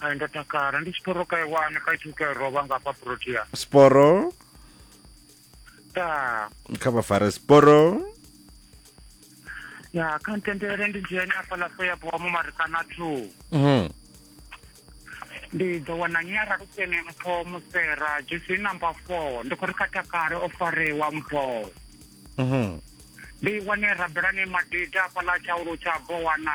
Hai ndo takala ndi siporo ka iwane ka ithu ka roba nga pa protea. Siporo. Ta. Kha vha fare siporo. Ya kha ntendele ndi dzhene afha la fo ya bo mu marikana thu. Mhm. Ndi ḓo wana nyara lukene mpho musera dzhusi number 4 ndi khou ri kha takale o farewa mpho. Mhm. Ndi wane rabelani madida afha la tshaulu tsha bowana.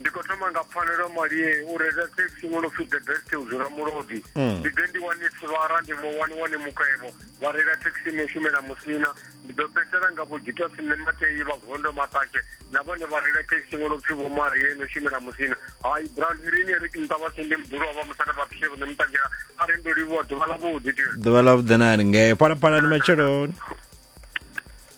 ndi khou thoma nga pfanelo malie u reila taxi wo no pfi the best u dzula mulodi mm. ndi ḓe ndi wane sivara ndi mu wani wane mukhwevho vha reila taxi no shumela musina ndi ḓo fhedzisela nga vho gita sine matei vha gondo maṱake na vhone vha reila taxi wo no pfi vho marie no shumela musina hai brown irini ri kimta vha sende mbulo wa vha musana vha pfishe vhone mutakela a ri ndo livhuwa ḓuvha ḽa vhuḓi ḓuvha ḽa vhuḓi na ri ngee phalaphalani matsheloni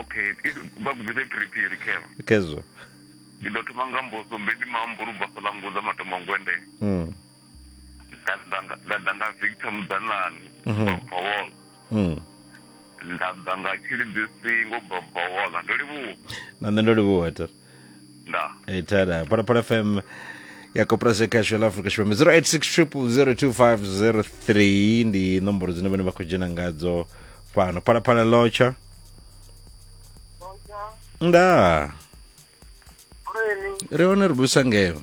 okay vha gudise phiriphiri khevha khezwo ndi ḓo thoma nga mboso mbedi mambo ri basa ḽa ngoza matombo ngwende mm. nda ḓa nga victor mudzanani mhm. babawola mm. nda ḓa nga tshilidzi singo babawola ndo livhuwa na nṋe ndo livhuwa tere nda Itana, para para FM ya Koprase Casual Africa Shipembe 0860002503 ndi nomboro dzine vhone vha khou dzhena ngadzo fhano. Para para locha. Nda, Kureni, ri hone ri busa ngeo.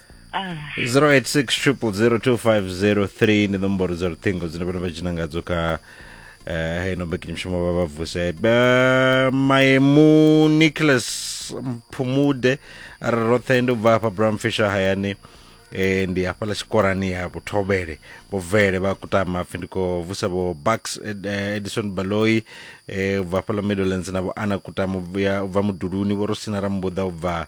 0860002503 ndi nomboro dza luṱhingo dzine vhana vha dzhina ngadzo kha eh, heino mbekanyamushumo vha vha vuse Eh, maemu nicholas mphumude a ri roṱhe ndi u bva hafha brown fisher hayani eh, ndi hafhaḽa tshikorani ha vhuthobele vhubvele vha kutama pfi ndi khou vusa vho bucks Ed- eh, edison baloi eh, u bva hafhaḽa middlelands na vho ana kutama u bva- u bva muduluni vho rosina rambuḓa u bva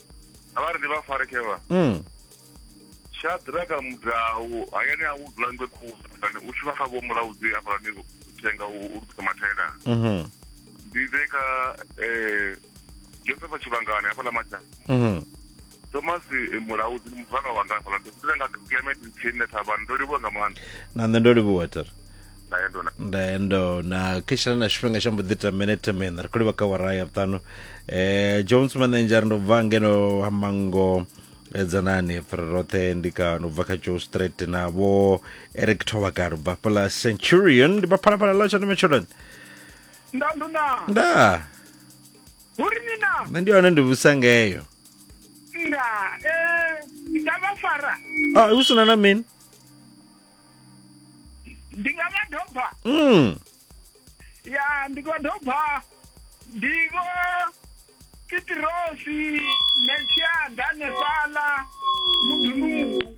a vha ri ndi vha farekevha mm. shadraka mudau hayani a u dzula ngwe khulani u shuma kha vho mulaudzi hafhalani thenga u lukisa mathaela mhm. ndi ḓe kha um eh, josefa tshivhangani hafhaḽa matshana mhm. thomas eh, mulaudzi ndi muzwala wanga hafhaḽa ndi ḓe nga clement ntshine thavhani ndo livhuwa nga maanḓa na nṋe ndo livhuwa tere ndaendo na ndaendo na khishana na tshifhinga tsha mbo ḓi ita minete miṋa ri khou livha kha wara ya vhuṱanu um jones manenja ri ndo bva ngeno ha mango eh, dzanani ri roṱhe ndi ka no bva kha joe street na vho eric thovaka ri bva fhala centurion ndi baphalaphala ḽa tshandume tsholoni ndandu na nda uri ni na nṋe ndi hone ndi vhusa ngeyo nda eh, ndavha fara a hu sina na mini ndi nga vha doba mm. ya ndi nga doba ndi vho kitirosi meshia danesala mudunungu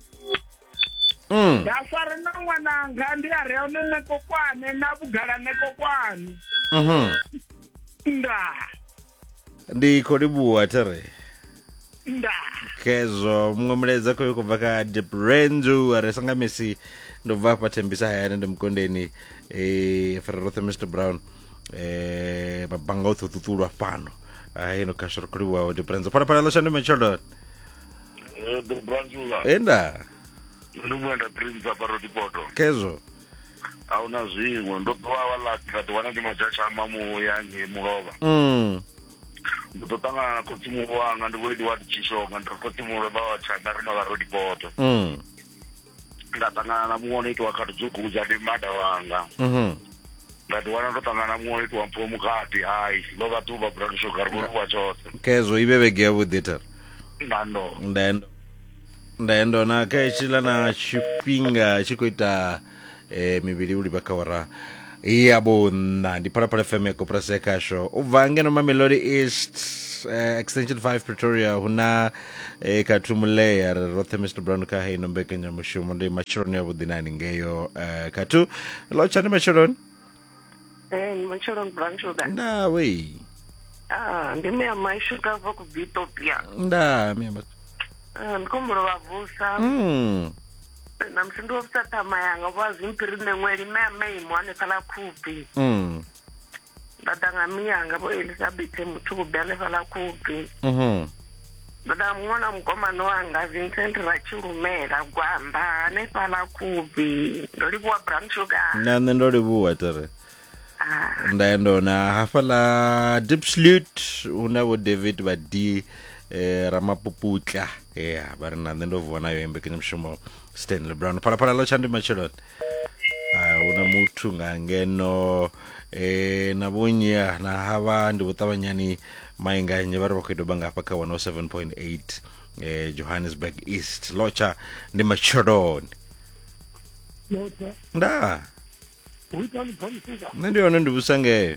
mm. nda fara na ṅwananga ndi a re one nekokwane na vhugala nekokwane mm -hmm. ndaa ndi khou livhuwa tere nda khezwo muṅwe mulaedza khoyo u khou bva kha diprenzu a re sanga misi ndo bva afha thembisa hayani ndi mukondeni eh, fara roṱhe mr brown eh, mabanga oṱhe ṱuṱulwa fhano haino khasho ri khou livhuwaho diprenzu phalaphala ḽo shandu matsheloni Eh, the branzula enda ndi muenda prince aparotipoto khezwo a hu na zwiṅwe ndo ḓo vha wala nda ḓi wana ndi madzhatshama muya ngei mulovha mm. ndo ḓo ṱangana na khotsi muhulu wanga ndi vhoidi wa tshishonga ndi ri khotsi muhulu vha wa tshanda ri mavha ro dipoto mm. nda ṱangana na muṅwe no itiwa kha tudzugudza ndi mada wanga mm-hmm. nda ḓi wana ndo ṱangana na muṅwe no itiwa mpfuwo mukati hai ndo vha ḓuvha brandishoga ri vhonikuwa tshoṱhe kezwo i vhe vhege yavhuḓi thara ndando ndando ndaendo na kha hetshiḽa na tshifhinga tshi khou ita eh, mivhili u livha kha ora ya vhunṋa ndi phalaphala fm ya koporasi ya khasho u bva ngeno mamelodi east eh, extension 5 pretoria hu na eh, khathumuleya ri roṱhe mr brown kha heino mbekanyamushumo ndi matsheloni avhuḓi na haningeo eh, khathu lotshani matsheloni Eh, ni matshelo brown sugar ndaa wei ah ndi mea mai sugar bva ku bitopia ndaa mea ma- Ah, ndi khombo lo vha vusa Mm. na musi ndi wo vusa ṱhama yanga vho a zwimpiri nṋe ṅweli mea maimo hanefha ḽa khubvi Mm. nda ḓa nga miyanga vho elisabethe muthu kubbi hanefha ḽa khubvi Mhm. ndo da muṅwana mukomana wanga vincent ratshilumela gwamba hanefhala kubi ndo livhuwa brown sugar na nṋe ndo livhuwa tere ah. nda ya ndona hafhaḽa deep slut hu na vho david vha d eh, ramapuputla ya vha ri na nṋe ndo vuwa nayo mbekanyamushumo stanley brown phalaphala ḽo tsha ndi matsheloni Ah, hu na muthu nga ngeno eh, na vhunya na havha ndi vhuṱavhanyani mainganye vha ri vha khou doba nga hafha kha 107.8 eh, johannesburg east lotsha ndi matsheloni Lotha, nda hu ita ni phamusuka. nṋe ndi hone ndi vhusa ngeyo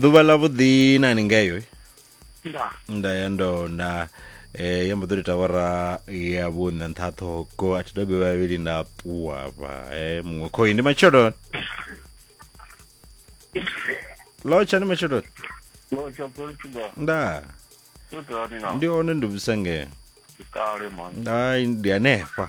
ḓuvha ḽa vhuḓi na ni ngeyo eh? nda ya ndo na eh ya mbo ḓo ita wara ya vhuṋa nṱha ṱhoko a thi dobe vhavhili nda ṱuwa vha eh muṅwe khoi ndi matsheloni lotsha ndi matsheloni lotsha portugal nda ndi hone ndi vhusengee kale man hayi ndi hanefha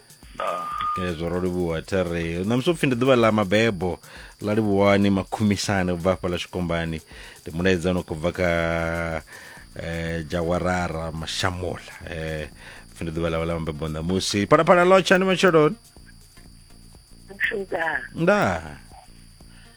okay zwo ro livhuwa thi ri ṋamusi upfhi ndi ḓuvha ḽa mabebo ḽa livhuwani makhumisani ubva hafha ḽa tshikombani ndi mulaedza ono khou bva kha eh, jawarara mashamola eh, upfhi ndi ḓuvha ḽawe ḽa mabebo ṋamusi phalaphala lotsha ndi matsheloni Nda. ndaa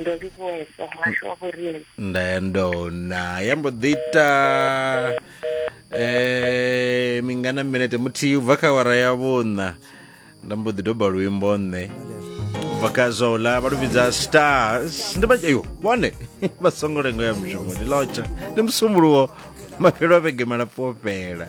ndo livhuwa sa muhasho wa vhorielo ndayandona ya mbo ḓi ita eh mingana minete muthihi u bva kha awara ya vhuṋa nda mbo ḓi doba luimbo nṋe u bva kha zola vha lu vhidza stars ndi vha yo vhone vha songo lengo ya mushumo ndi lotsha ndi musumbuluwo mafhelo a vhege malapfu o fhela